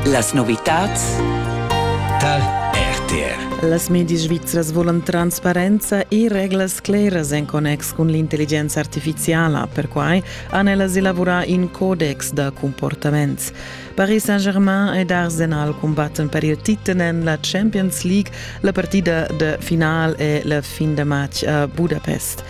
Las novitads tar RTR. Las medias svizras volan transparenza e reglas claras en connex cun l'intelligenza artificiala. Perquai han ellas elaborà in codex da comportaments. Paris Saint-Germain ed Arsenal combattan per il titel en la Champions League. La partida de final è la fin da match a Budapest.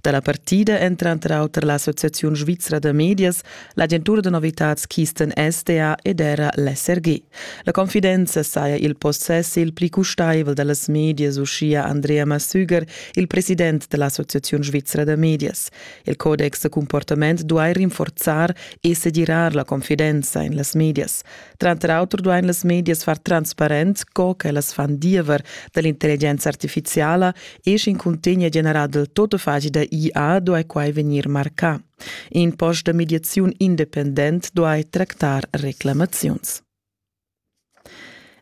Da la partida èn tranter auter l'Associaziun svizra da medias, l'agentura da novitads Kisten SDA ed era l'SRG. La confidenza saja il possess il pli custaivel da las medias, uschia Andrea Massüger, il president da l'Associaziun svizra da medias. Il codex da comportament duai rinforzar e segirar la confidenza en las medias. Tranter auter duain las medias far transparent co ch'ellas fan diever da l'intelligenza artifiziala e sch'in cuntegn è generà dal tuttafagi da IA duai quai vegnir marcà. In post da mediaziun independent duai tractar reclamaziuns.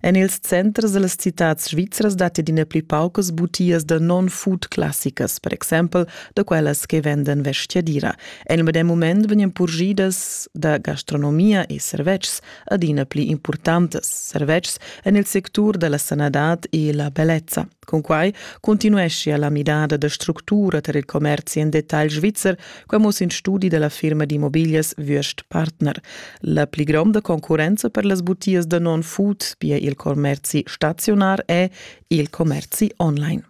En ils centers da las citads svizras datti adina pli paucas butias da non-food classicas, per exempel da quellas che vendan vestgadira. En il medem mument vegnan purgidas da gastronomia e servetschs adina pli impurtantas servetschs en il sectur da la sanadad e la bellezza. Cunquai continueschia la midada da structura tar il commerzi en detagl svizzer, quai mo sin studi da la firma d'immobiglias Würst Partner. La pli gronda concurrenza per las butias da non-food, pia il commerzi staziunar, è il commerzi online.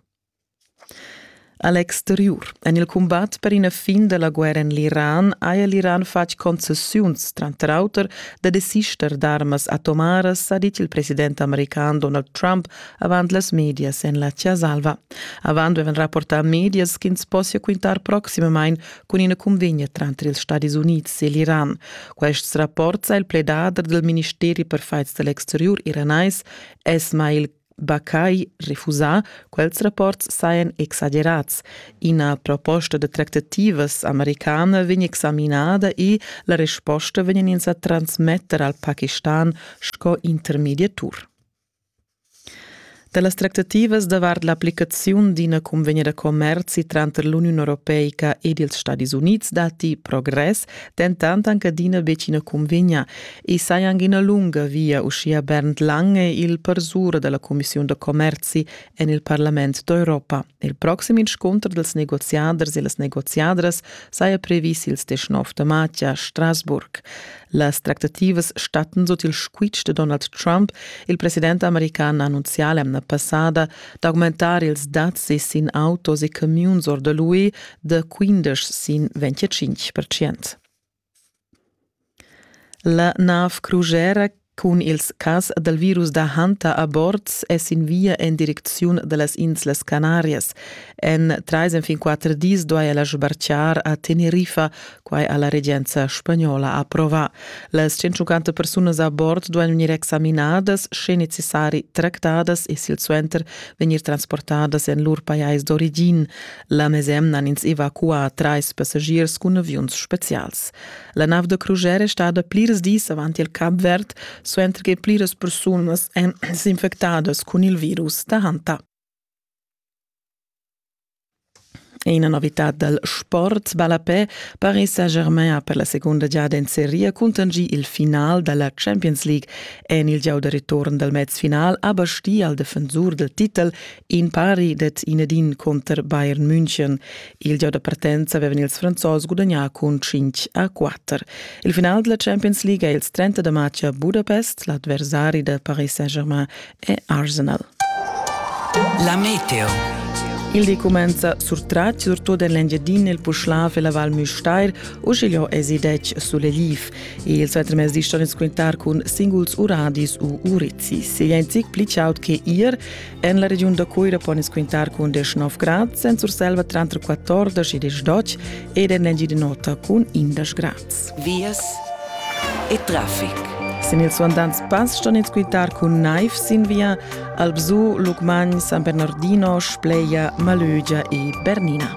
A l'exteriur, en il cumbat per ina fin da la guerra en l'Iran, haja l'Iran fatg concessiuns, tranter auter da desister d'armas atomaras, ha dit il president american Donald Trump avant las medias en la Chiasalva. Avant avevan rapportà medias ch'ins possia quintar proximamain cun ina cunvegna tranter ils Stadis Unids e l'Iran. Quests rapports ha il pledader del Ministeri per fights dall'exteriur iranais Ismail Bakai refusà, quels rapports sajan exagerats. Ina proposta de tractativas americana vegn examinada e la resposta vegn ins a transmetter al Pakistan sco intermediatur. Dalas tractativas davart l'applicaziun d'ina convegna da commerzi tranter l'Uniun Europeica ed ils Stadis Units datti progress, dentant anche adina betg ina convegna. I saja anc ina lunga via uschia Bernd Lange, il persura da la Commissiun da commerzi en il Parlament d'Europa. Il proxim inscunter dels negoziaders e las negoziadras saja previs ils 19 de maig a Strasburg. Las tractativas statten sut il squitsch de Donald Trump. Il president american ha annunzià l'emna passada d'augmentar ils dazi sin autos e camiuns or de l'UE de 15 sin 25 percent. La nav crujera cun ils cas dal virus da Hanta a bord è sin via en direcziun da las Inslas Canarias. En trais enfin quatter dis duaja la sbartgar a Tenerife, quai ha la regenza spagnola approvà. Las 150 persunas a bord duain vegnir examinadas, sche necessari tractadas e silsuenter vegnir transportadas en lur pajais d'origin. La mesemna han ins evacuà trais passagiers cun aviuns spezials. La nav da crusher è stada plirs dis avant il Cap Verd, suenter che pliras persunas èn s'infectadas cun il virus da Hanta. E ina novitad dal sport ballapè Paris Saint-Germain ha per la segunda giada en seria contingì il final da la Champions League. En il gieu da return dal mezfinal ha bastì al defensur dal titel In pari det in ed in conter Bayern München. Il gio da partenza avevan ils Franzos gudagnà cun 5 a 4. Il final della Champions League è il 30 da maggio a Budapest, l'avversari da Paris Saint-Germain e Arsenal. La Meteo. Il di comenza sur Tracci, surtut en l'Engiadina, il Puschlav e la Val Müstair, usiglio esidec sull'Eliv. Il svetter mes di ston quintar cun singuls uradis u urizi. Se jent zic pli chaud che ier, En la regiun da Cuira pon ins quintar cun 19 grads, en Surselva tranter 14 e 12 ed en Engiadin'Ota cun 11 grads. Vias e traffic. Sin ils suandants pass ston ins quintar cun naiv sin via Albzù, Lucmagn, San Bernardino, Spleia, Malögia e Bernina.